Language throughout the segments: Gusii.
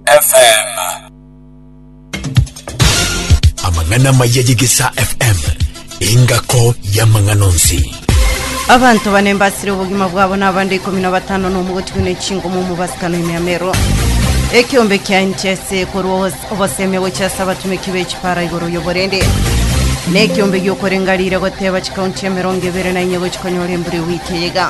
FM. Amang'ana amaya y'Egesaa FM engako y'amang'ana onsi. abanto bane mbasire obogima bwabo na abande ikomi na batano na omogotigwe na echingo mu mubasikano emiamero ekiombe kia nchese korwa obos- oboseme gochia ase abatumeki b'echipara igoro y'oborende na ekiombe giokorenga rire goteba chikaunti emerongo ebere na inye gochia konyora embura ewiki eyega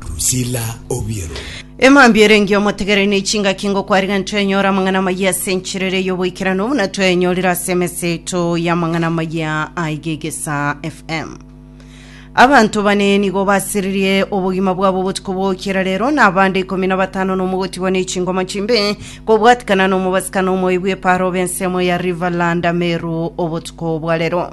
Drusilla Obiero. Emambia erenge omotegere ne chingaki ngo kwariga ntwenyora amang'ana amaya ase enchirere y'oboikeranu buna twayenyorire ase emesa yaito y'amang'ana amaya a Igegesa FM. Abanto bane nigo basiririe obogima bwabo obotuko bwokera rero na abande ikomi na batano nomo gotigwa ne chingoma chimbe kobwatikana nomobasikano omoebu eparo b'ensemo ya Riverland Ameru obotuko bwa rero.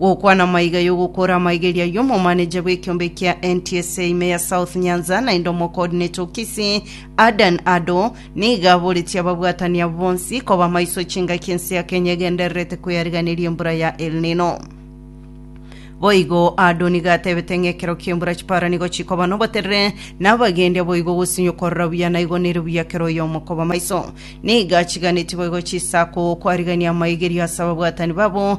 Gokwana amaiga y'ogokora amaigeria y'omomaneja bw'ekiombe kia NTSA ime ya South Nyanza naende omocoordinator o Kisii, Adan Ado, nigo aboretie ababwatani abo bonsi koba amaiso chingaki ense ya Kenya egendererete kweyariganeria embura ya El Nino. Boigo Ado nigo atebete ng'a ekero ki'embura chipara nigo chikoba noboterere, na abagendi aboigo gosinywa okorora buya na igo nere buya kera oyomo koba amaiso. Nigo achiganetie boigo chisako kwarigan'ia amaigerio ase ababwatani babo,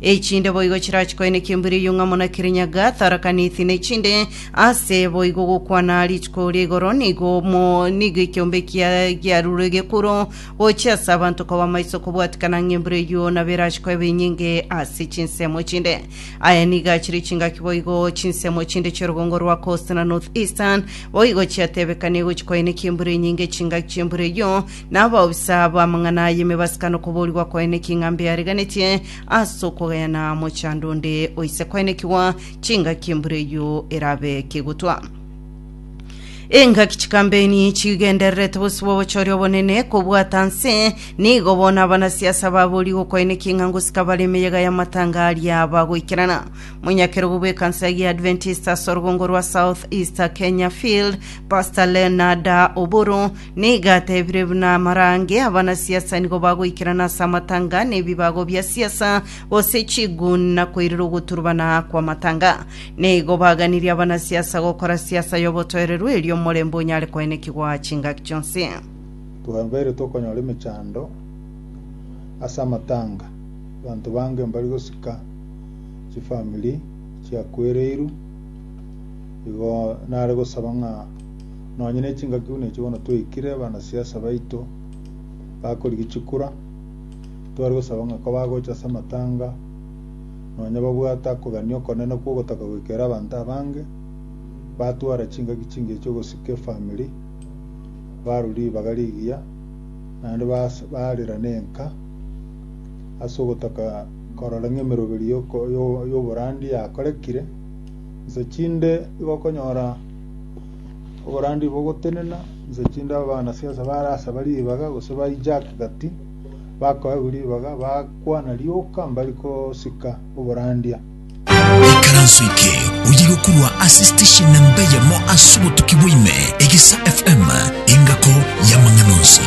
Echinde boigo chirachi koeneka embura eyio ng'a muna Kirinyaga atarakaneti nechinde ase boigo gokwana rituko ria igoro nigo mo nigo ekiombe kia giarure gekuro gochia ase abanto koba maiso kobwatikana ng'a embura eyio nabo erachi koeba enyinge ase chinsemo chinde. Aya nigo achire chingaki boigo chinsemo chinde chi'orogongo rwa Coast na North Eastern boigo chiatebekania gochi koeneka embura enyinge chingaki chi'embura eyio Na abaofisa b'amang'ana ay'emebasikano koboorigwa kwaene ki ng'a mbeareganetie ase okogayana mochando onde oise kwaenekigwa chingaki embura eyio erabe kegotwa. Engaki chikambeni chigendererete bosibwa obochori obonene kobwata nse, nigo bono abanasiasa baboorigwe kwaene ki ng'a ngosika bare emeyega y'amatanga aria bagoikerana. Monyakerogo bw'ekansa ya Adventist ase orugongo rwa South East Kenya Field, Pastor Leonard Oburu Nigo atebire buna amarange abanasiasa nigo bagoikerana ase amatanga nebibago bia siasa, gose chiguni na koirera ogoturubana kw'amatanga. Nigo baganirie abanasiasa gokora siasa y'obotoereru erio omorembe onyare koenekigwa chingaki chionsi. Twabeire tokonyora emechando ase amatanga, abanto bange mbari gosika chifamiri chiakwereirwe, igo nare gosaba ng'a Nonya ne chingaki buna echio bono twaikire bana siasa baito bakorigia chikura tware gosaba ng'a ko bagocha ase amatanga nonya babwate akogania okonene kwa ogotaka goikera abanto abange batwara chingaki chingiya chia ogosika efamiri barwa ribaga rigiya naende bas- barera nenka ase ogotaka korora ng'a emeroberi yoko- yo- yoborandi yakorekire nse chinde igo okonyora Oborandia obo ogotenena, inse chinde abanasiasa barasaba ribaga gose ba hijack gati, bakoegwa ribaga bakwana rioka mbari kosika oborandia. Ikaranso eke oye gokurwa ase station namba eyemo ase obotuki bwaime egisa FM engako y'amang'ana onsi.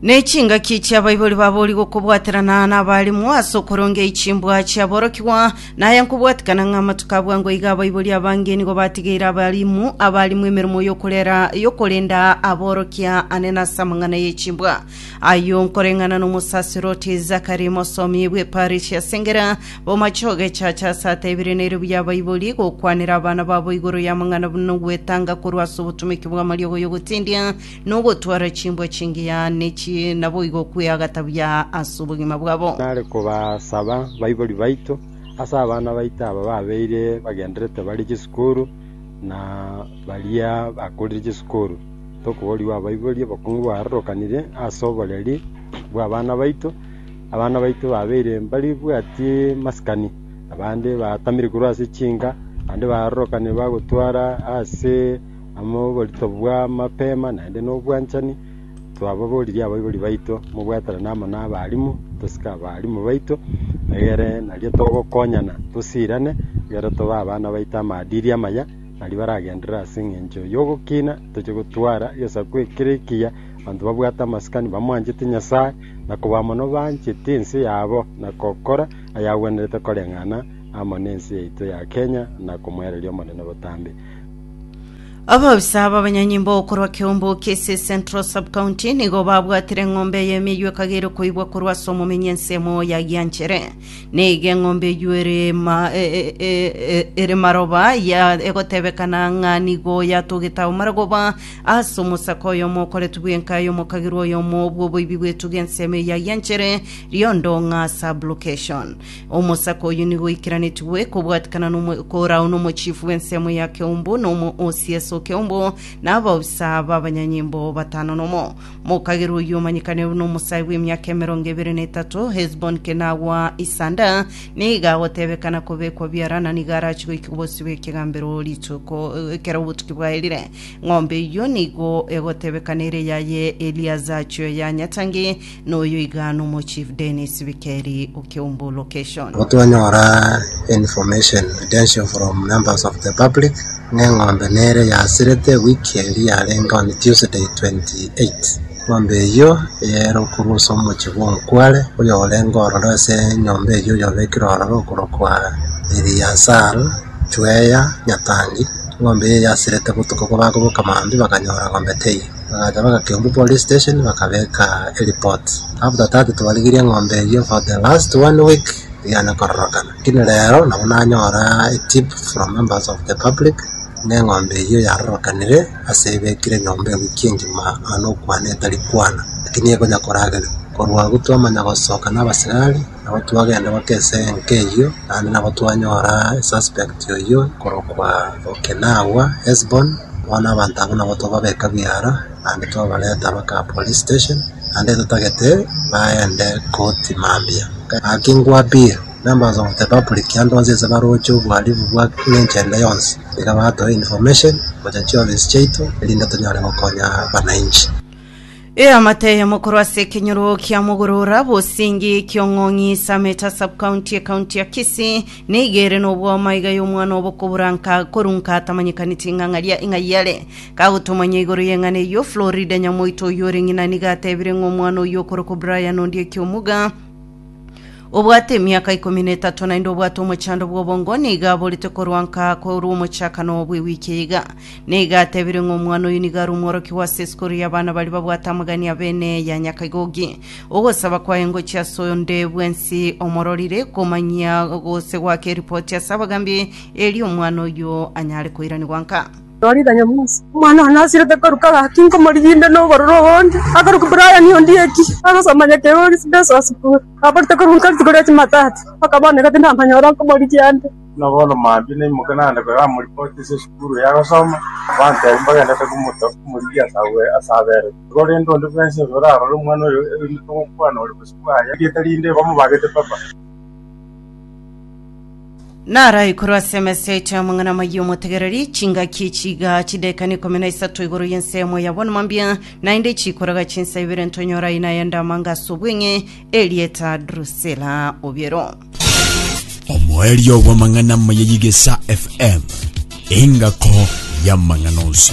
Ne chingaki chi'abaibori baboria gokobwaterana nabarimu ase okorongei chimbwa chiaborokigwa, na aya nkobwatikana ng'a amatuko a bwango iga abaibori abange nigo batigeire abarimu abarimu emeremo y'okorera y'okorenda aborokia ane nase amang'ana ye chimbwa. Ayio nkoreng'ana n'omosaserdoti Zakari mosomi bw'eparisi asengera bomache ogechacha ase ateebire nere buya abaibori gokwanera abana babo igoro y'amang'ana buna ogwetanga korwa ase obotomeki bw'amariogo y'ogotindia nogotwara chimbwa chingiya ne chi, naboigo kweagata buya ase obogima bwabo. Nare kobasaba baibori baito, ase abana baito aba babeire bagendererete bare chisukuru, na baria bakorire chisukuru, tokoborigwa abaibori, obokong'u bwarorokanire ase oboreri bw'abana baito, abana baito babeire mbaribwati masikani, abande batamire korwa ase chinka, abande barorokanire bagotwara ase. amo oborito bw'amapema naende nobwanchani, twababoririe abaibori baito mobwatanane amo nabarimu, tosike abarimu baito, egere nario togokonyana tosirane, egere tobe abana baito amadiri amaya, naria baragenderere ase eng'encho y'ogokina, toche gotwara egesaku ekere ekiya, abanto babwate amasikani bamwanchete Nyasae, na koba mono bancheti ense yabo, na gokora ayagwenerete koreng'ana amo nense yaito ya Kenya, na komoereria Omonene botambe. Abaofisa b'abanyanyimbo korwa Kiombo Kisii Central Sub-County nigo babwatire eng'ombe eye emeywe ekagera koibwa korwa ase omomenyi ensemo yagianchere neiga eng'ombe eywe ere ma- e- e- e- e- ere maroba ya egotebekana ng'a nigo yatogete ao marogoba ase omosaka oyomo okoretwe bwenka aye omokagera oyomo bw'oboibi bw'etuga ensemo eye yagianchere riondo ng'a sub-location Omosake oyio nigo oikeranetigwe kobwatikana nomo- korao nomochifu bw'ensemo ya keumbu, na omo o CS o keumbu, na abaofisa b'abanyanyimbo batano nomo. Mokagerwa oyio omanyekane buna omosae bw'emiaka emerongo ebere na etato, Hesbon kenagwa isanda, nigo agotebekana kobekwa biara, na nigo arache goika bosio bw'ekegambero rituko ekero obotuki bwaerire. Ng'ombe eyio nigo egotebekana ere yaye Eliazacho ya nyatangi, Noyo iga nomochief Dennis Bikeri o Kiumbu location. Igo twanyora information attention from members of the public ng'a eng'ombe nere yasirete week eria yarenge on Tuesday 28. Eng'ombe eyio yaerokorwa ase omochie bwa Omukware oyorenge ororo ase enyomba eyio oyobekire ororo okorwa kwa Eliasal Chweya Nyatangi. Eng'ombe eyio yasirete botuko kobakoboka maambia bakanyora eng'ombe teiyo. Bagacha bagaika Kiambu police station bakabeka ereport after that twarigirie eng'ombe eyio for the last one week tiyana kororokana lakini rero nabo nanyora etip from members of the public ng'a eng'ombe eyio yarorokanire ase ebekire nyomba ewiki engima noyo nokwana etari kwana lakini ekonya koragerwa korwa agwo twamanya gosoka na abasigari. Nabo twagenda goika ase enka eyio, naende nabo twanyora esuspect oyio korokwa Okinawa, Hesbon, bono abanto abwo nabo twababeka biara, naende twabareta baka police station, naende totagete baende koti mambia. Gaki nkwabire, nambaasa goteba buri kianda onsi ase baroche obohalifu bwa engencho ende yonsi, iga batoe information gocha chiofisi chiaito, erinde tonyare gokonya abananchi. Eamate eye mokorwa ase ekenyoro kia mogorora bosingi kiong'ong'i Sameta subcounty ecounty ya Kisii nigo ere nobwoma iga y'omwana obokobura nka korwa nka atamanyekaneti ng'ang'aria ing'ai yare. Kagotomanya igoro y'eng'ana eyio Florida nyamoito oyio ore ng'ina nigo atebire ng'a omwana oyio okorokwa Brian Ondieki Omuga Obwate emiaka ikomi na etato naende obwate omochando bw'obongo, nigo aborete korwa nka korwa omochakano bw'ewiki eye iga. Nigo atebire ng'a omwana oyo nigo are omworokigwa ase esikuru y'abana baria babwate amagani abene ya nyakaigoki. Ogosaba kwaye ngochia ase onde bwensi omororire, komanyia gose goaka eripoti ase abagambi, erio omwana oyo anyare koiranigwa nka. Norida Nyamusi, omwana one asirete koruka gaki, nkomorigiinde nobororo obonge, akoruka Brian Ondieki, agosoma nyeka igoro Residential School, aborete korwa nkare rituko ria Jumatatu, mpaka bono egati ndamanyore nkomorigia nde. Buna bono mambia naimoke naende koyamoripoti ase esukuru eye agosoma, abantebi mbagendete komorigia ase agwo ase aberete. Korende onde bwensi oyo orarore omwana oyo, erinde togokwana ore bosio bwaye, erieta rinde bamobagete papa. Nara igoro ase emesa yaito y'amang'ana amayia omotegereri, chingaki echiga chidekani ikomi na isato igoro y'ensemo ya bonuma mbia, naende chikoraga chinsa ibere ntonyora aina ya ndamanga ase obweng'e, erieta Drusila obiero. omoerio bw'amang'ana amaya y'igesa fm engako y'amang'ana onsi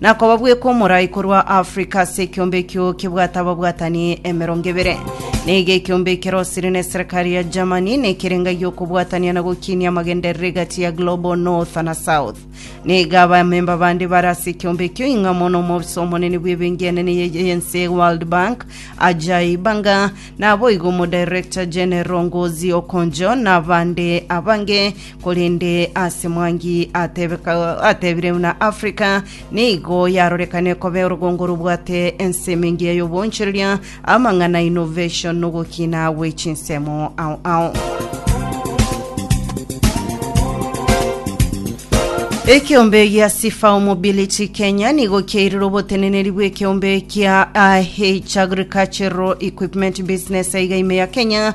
Na kobabweka omorai korwa Afrika ase ekiombe ekio kebwate ababwatani emerongo ebere. Na iga ekiombe ekero osire na eserekari ya Germany na ekerenga gi'okobwatania na gokinia amagenderero egati ya Global North na South. Na iga abamemba bande bare ase ekiombe ekio ing'a mono omobisa omonene bw'ebenki enene ye- y'ense World Bank Ajay Banga, naboigo omodirector general Ngozi Okonjo na abande abange korende ase Mwangi atebeka, atebire buna Africa nigo yarorekane koba orogongo robwate ensemo engiya y'obonchereria, amang'ana, innovation, na ogokina gwe chinsemo ao ao. Ekeombe gia Sifao Mobility Kenya nigo kiairire oboteneneri bw'ekeombe kia AH Agricultural Equipment Business aiga ime ya Kenya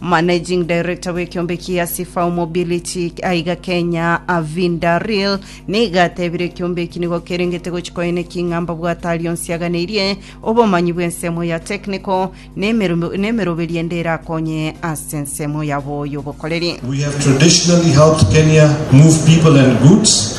Managing Director bw'ekeombe kia Sifau Mobility aiga Kenya Avinda Real nigo atebire ekeombe eki nigo kerengete gochi koe ne king'amba bwatari onsi aganeirie obomanyi bw'ensemo ya technical n'emeru- n'emeroberio ende erakonye ase ensemo yabo y'obokoreri. We have traditionally helped Kenya move people and goods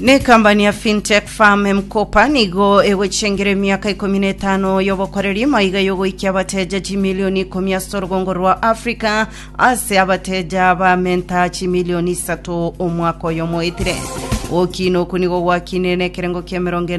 Nekampani ya Fintech Farm M-Kopa nigo egochengera emiaka ikomi na etano y'obokoreri maiga y'ogoikia abateja chimilioni ikomi ase orogongo rwa Africa ase abateja bamenta chimilioni isato omwaka oyomo oetire. Gokina oku nigo gwakinire nekerengo kia emerongo ene